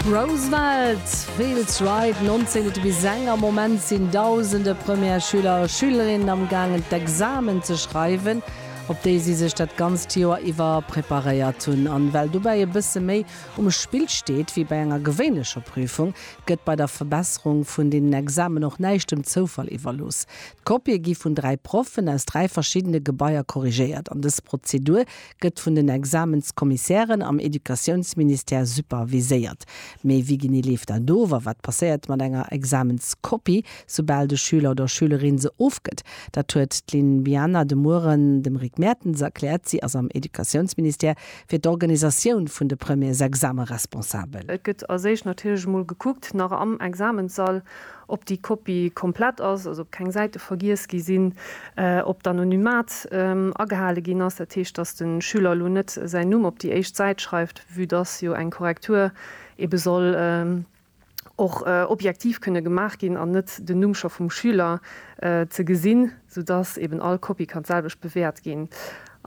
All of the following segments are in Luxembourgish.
Roosevelt, Fields Ride 19 bis eng, Am Moment sinn dausende Première-Schüler a Schülerinnen am gaangen d'Examen ze schreiwen, op déi si sech dat ganzt Joer iwwer preparéiert hunn. An well dobäi e bësse méi um Spill steet wéi bei enger gewéinlecher Prüfung, gëtt bei der Verbesserung vun deenen Examen och näischt dem Zoufall iwwerlooss. D'Kopië gi vun dräi Proffen aus dräi verschiddene Gebaier korrigéiert an dës Prozedur gëtt vun den Examenskommissären am Educatiounsministère superviséiert. Mee wéi genee leeft dat of a wat passéiert mat enger Examenskopie, soubal de Schüler oder Schülerin se ofgëtt? Dat huet d'Lynn Biana de Mueren dem Rick Mertens erkläert. Si ass am Educatiounsministère fir d'Organisatioun vun de Premiersexame responsabel. Et gëtt als éischt natierlech emol gekuckt, nach am Examenssall, ob déi Kopie komplett ass, also ob keng Säite vergiess gi sinn, ob d'Anonymat agehale ginn ass, dat heescht, dass de Schüler elo net säin Numm op déi éischt Säit schreift, vue dass jo eng Korrektur ebe soll och objektiv kënne gemaach ginn an net den Numm scho vum Schüler ze gesinn sou dass eben all Kopie kann d'selwecht bewäert ginn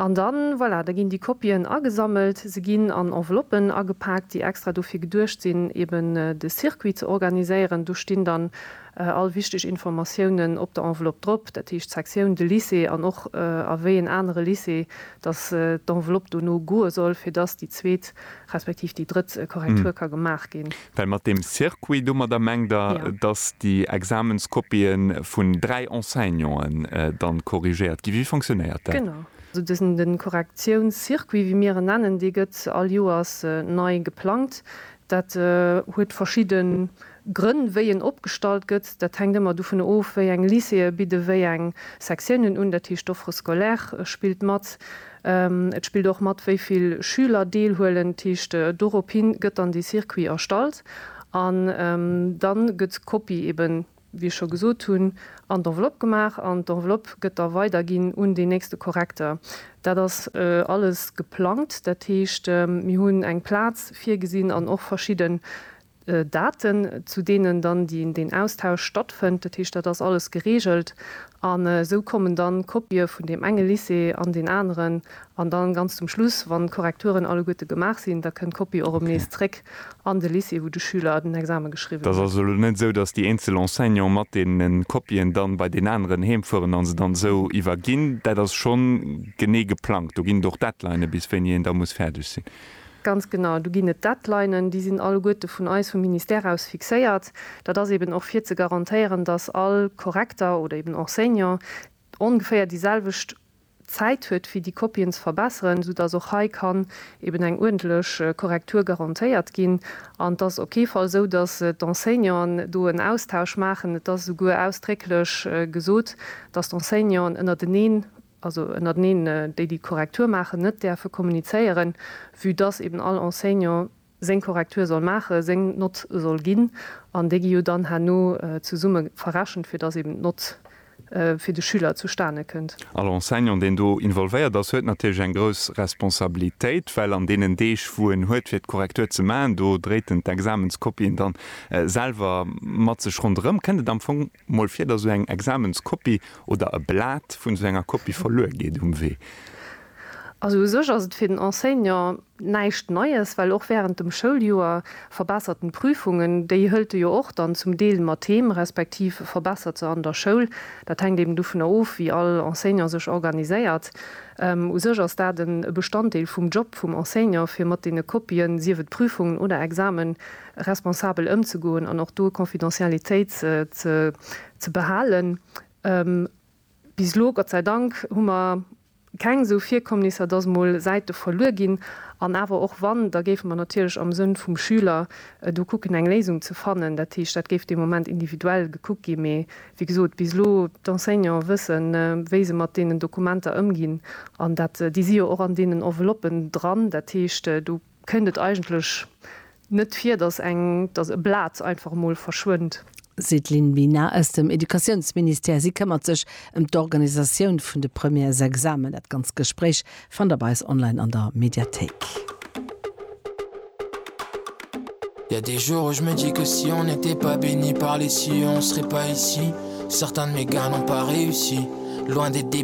an dann, voilà, da ginn déi Kopien agesammelt, se ginn an Enveloppen agepaakt, déi extra dofir geduecht sinn, eben de Circuit ze organiséieren. Do stinn dann all wichteg Informatiounen op der Enveloppe drop, dat heescht d'Sektioun, de Lycée an och a wéi en anere Lycée dass d'Enveloppe dono goe soll, fir dass déi zweet respektiv déi drëtt Korrektur ka gemaach ginn. Well mat deem Circuit domadder mengt Der, dass déi Examenskopie vun dräi Enseignanten dann corrigéiert ginn? Wéi fonctionnéiert dat? Genau esou. Dësen de Korrektiounscircuit, wéi mir en nennen, dee gëtt all Joers nei geplangt. Dat huet verschidde Grënn, wéi en opgestallt gëtt. Dat hänkt ëmmer dovun of, wéi eng Lycéeë bidde wéi eng Sektiounen un. Dat heescht, d'Offre scolaire spillt mat. Et spillt och mat, wéi vill Schüler deelhuelen. Dat heescht, dorophin gëtt dann dee Circuit erstallt an dann gëtt d'Kopie eben, wéi ech scho gesot hunn, an d'Enveloppe gemaach an d'Enveloppe gëtt da weiderginn un deen nächste Korrekter. Dat ass alles geplangt. Dat heescht, mir hunn eng Plaz virgesinn an och verschidden Daten, zu deenen dann deen Austausch stattfënnt. Dat heescht, dat ass alles gereegelt. An esou kommen dann Kopië vun deem enge Lycée an deen aneren. An dann ganz zum Schluss, wann d'Korrekturen alleguerte gemaach sinn, da kënnt d'Kopie och erëm nees zréck an de Lycée, wou de Schüler den Exame geschriwwen huet. Et ass also elo net esou, datt déi eenzel Enseignanten mat deene Kopien dann bei deen aneren heem fueren a se dann esou iwwerginn. Dat ass schonn genee geplangt. Do ginn et och Deadlinën, bis wéini een da muss fäerdeg sinn. Ganz genau, do ginn et Deadlinen, déi sinn alleguerte vun eis, vum Ministère aus fixéiert. Dat ass eben och fir ze garantéieren, dass all Korrekter oder eben Enseignant ongeféier déi selwecht Zäit huet fir déi Kopien ze verbesseren, soudass och hei kann eben eng uerdentlech Korrektur garantéiert ginn. An et ass op kee Fall esou, dass d'Enseignanten do en Austausch maachen. Et ass esouguer ausdrécklech gesot, dass d'Enseignanten ënnerteneen also ënnerteneen, déi déi Korrektur maachen, net däerfe kommunizéieren, vue dass eben all Enseignant seng Korrektur soll maachen, seng Nott soll ginn, an déi gi jo dann herno zesumme verrechent, fir dass eben d'Nott fir de Schüler zustane kënnt. All Enseignant, deen do involvéiert ass, huet natierlech eng grouss Responsabilitéit, well an deenen Deeg, wou en huet, fir d'Korrektur ze maachen, do dréit en d'Examenskopien dann selwer mat sech ronderëm, kënnt et am Fong Mol vir, datt esou eng Examenskopie oder e Blat vun esou enger Kopie verluer geet um Wee. Also u sech ass et fir den Enseignant näischt Neies, well och wärend dem Schouljoer verbessert en d'Prüfungen. Déi hëlt e jo och dann zum Deel mat heem, respektiv verbessert se an der Schoul. Dat hänkt eben dovunner of, wéi all Enseignant sech organiséiert. U sech ass dat e Bestanddeel vum Job vum Enseignant, fir mat deene Kopien, sief et Prüfungen oder Examen, responsabel ëmzegoen an och do Confidentialitéit ze behalen. Bis elo, Gott sei Dank, hu mer keng esou Virkommnisser, dass emol Säite verluer ginn. An awer och wann, da géife mer natierlech am Sënn vum Schüler do kucken, eng Léisung ze fannen. Dat heescht, dat géif dee Moment individuell gekuckt ginn. Mee wéi gesot, bis elo, d'Enseignanten wëssen, wéi se mat deenen Dokumenter ëmginn. An dat, déi si jo och an deenen Enveloppen dran. Dat heescht, do Kënnt et eigentlech net vir, dass eng, dass e Blat einfach emol verschwënnt? Sideline Bina aus dem Educatiounsministère. Si këmmert sech ëm d'Organisatioun vun de Premièresexamen. Dat ganz Gespréich fannt der bei eis online an der Mediathéik. Y a des jours où je me dis que si on n'était pas béni par les cieux on serait pas ici certains de mes gars n'ont pas réussi loin d'être des.